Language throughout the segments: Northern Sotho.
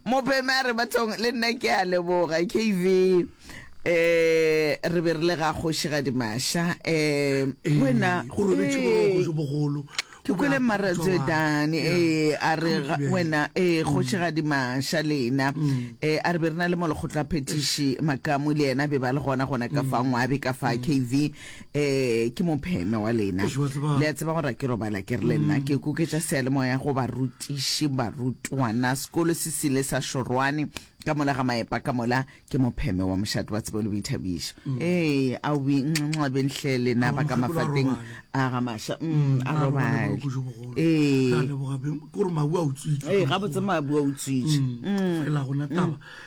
Mopeme a re bathong le nna ke a leboga KV um re be re le ga kgošigadi maša um wena ke kwele mmaratsoe dane ee a re wena ee kgošigadi maša lena um a re be re na le molekgotla phetiši makamo le yena be ba le gona gona ka fa ngwabe ka fa KV eh ke mopheme wa lena Eish, wa tseba- le a tseba gore a ke robala ke re le nna ke koketša sealemoya go barutiši barutwana sekolo se sile sa šorwane ka mola ga maepa ka mola ke mopheme wa mošate wa tsebo le boithabišo ee a o bentle lena Aowa, ba ka mokgekolo a mafateng robale. a ga maša mm, a Ra robala robale boruku jo bogolo. ee Ra leboga be- ke gore mabu a utswitswe ee ka gabotse mokgolo. mabu a utswitše Mm, fela gona taba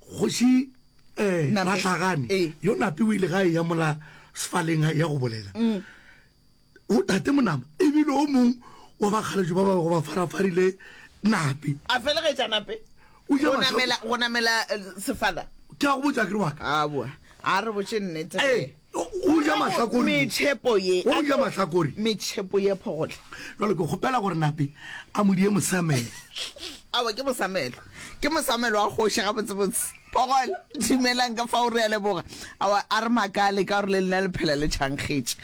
kgoši um Nape. ratlhagane Ee. yo nape o ile ga e ya mola sefaleng a ya go bolela Mm. o tate monama ebile o mong wa bakgaletso ba bago ba farafarile nape a felegetša nape O ja go mahlaku. namela go namela eh, sefala ke a go botsa kere waka a boa a re botše nnete Ee. go ja mahlakori metšhepo ye go ja mahlakori metšhepo ye phogotla jalo ke kgopela gore nape a modie mosamelo awa ke mosamelo ke mosamelo wa kgoši ga botsebotse pogole dumelang ka fa o re a leboga awa a re makale ka gore le lena le phela le tšhankgetše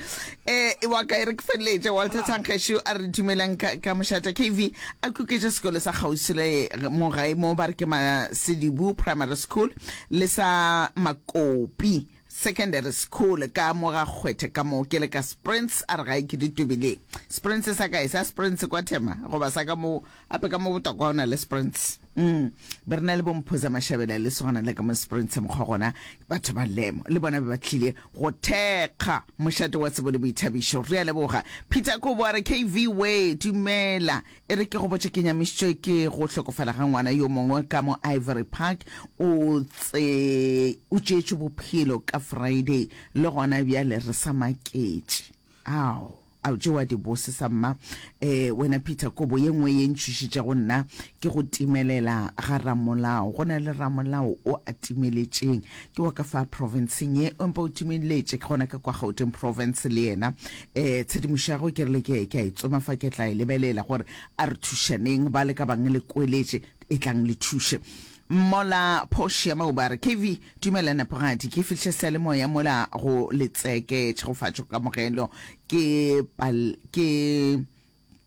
um e wa ka e re ke feleletše walter tšhankgešo a re dumelang ka mošata kv a kuketše sekolo sa kgauswi le mo gae mo ba re ke masedibu primary school le sa makopi Secondary School ka mo ga Kgwethe ka mo ke le ka Springs a re gae ke ditobile. Springs sa kae? Sa Springs kwa Thema goba sa ka mo ape ka mo botokwa o na le Springs? Mm. Be re na le bomphoza Mashabela le segona le ka mo Springs mokgwa gona batho ba lemo le bona be ba tlile go thekga mošate wa tsebo le boithabišo. Re a leboga. Peter Kobo a re KV we dumela E re ke go botše, ke nyamišitšwe ke go hlokofala ga ngwana yo mongwe ka mo Ivory Park. O tse, o tšeetšwe bophelo ka Friday, le gona bjale re sa maketše. Ao, ao, tšeo a di bose sa mma. E, wena Peter, kobo ye nngwe ye ntšhošitšego nna ke go timelela ga Ramolao. Go na le Ramolao o a timeletšeng. Ke wa ka fa province-eng ye, o empa o timeletše, ke gona ka kwa Gauteng province le yena. E, tshedimošago ke rile ke, ke a e tsoma fa ke tla e lebelela, gore a re thušaneng, ba le ka bang le kweletše, e tlang le thuše. Mola Portia Mauba a re, KV, dumela Nepogadi, ke fihle seyalemoya mola go letseke, tšhegofatšo, kamogelo, ke, pal, ke,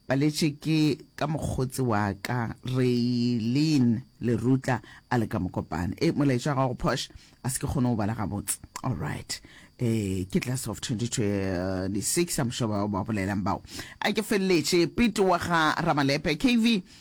paletše ke ka mokgotsi wa ka Raylene Lerutla a le ka Mokopane. E, molaetša wa gago Posh a se ke kgone go bala gabotse. All right. E, ke class of 2026 I'm sure ba ba bolelang bao. A ke feleletše Pete wa ga Ramalepe KV.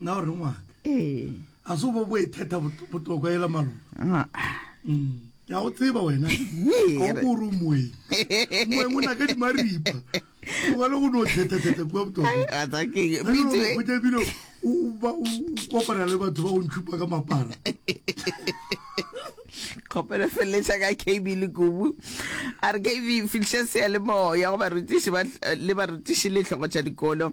na o re ngwaka ee a se bo bo e theta botloko ela malo ah. mm. ke a go tseba wena ga o ko re moe moe mo na ka di maripa o ga le go no theta theta kwa botloko a tsa ke bitse go ja bile o ba o kopana le batho ba go ntshupa ka mapara kgopele feleletša ka kb le kubu a re kb fihliša seya le moya go barutiši le barutiši le tlhogo tša dikolo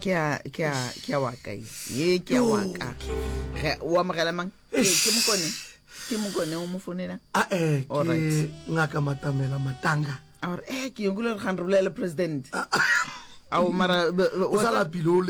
ke a ke a ke a wa ka ye ye ke a wa ka Ge- o amogela mang Ke- ke mokone ke mokone o mo fonela a eh, All ke right. ngaka matamela matanga a gore e ke yengwe le re kgang re bolele president ao mara be- be- o sa lapile o le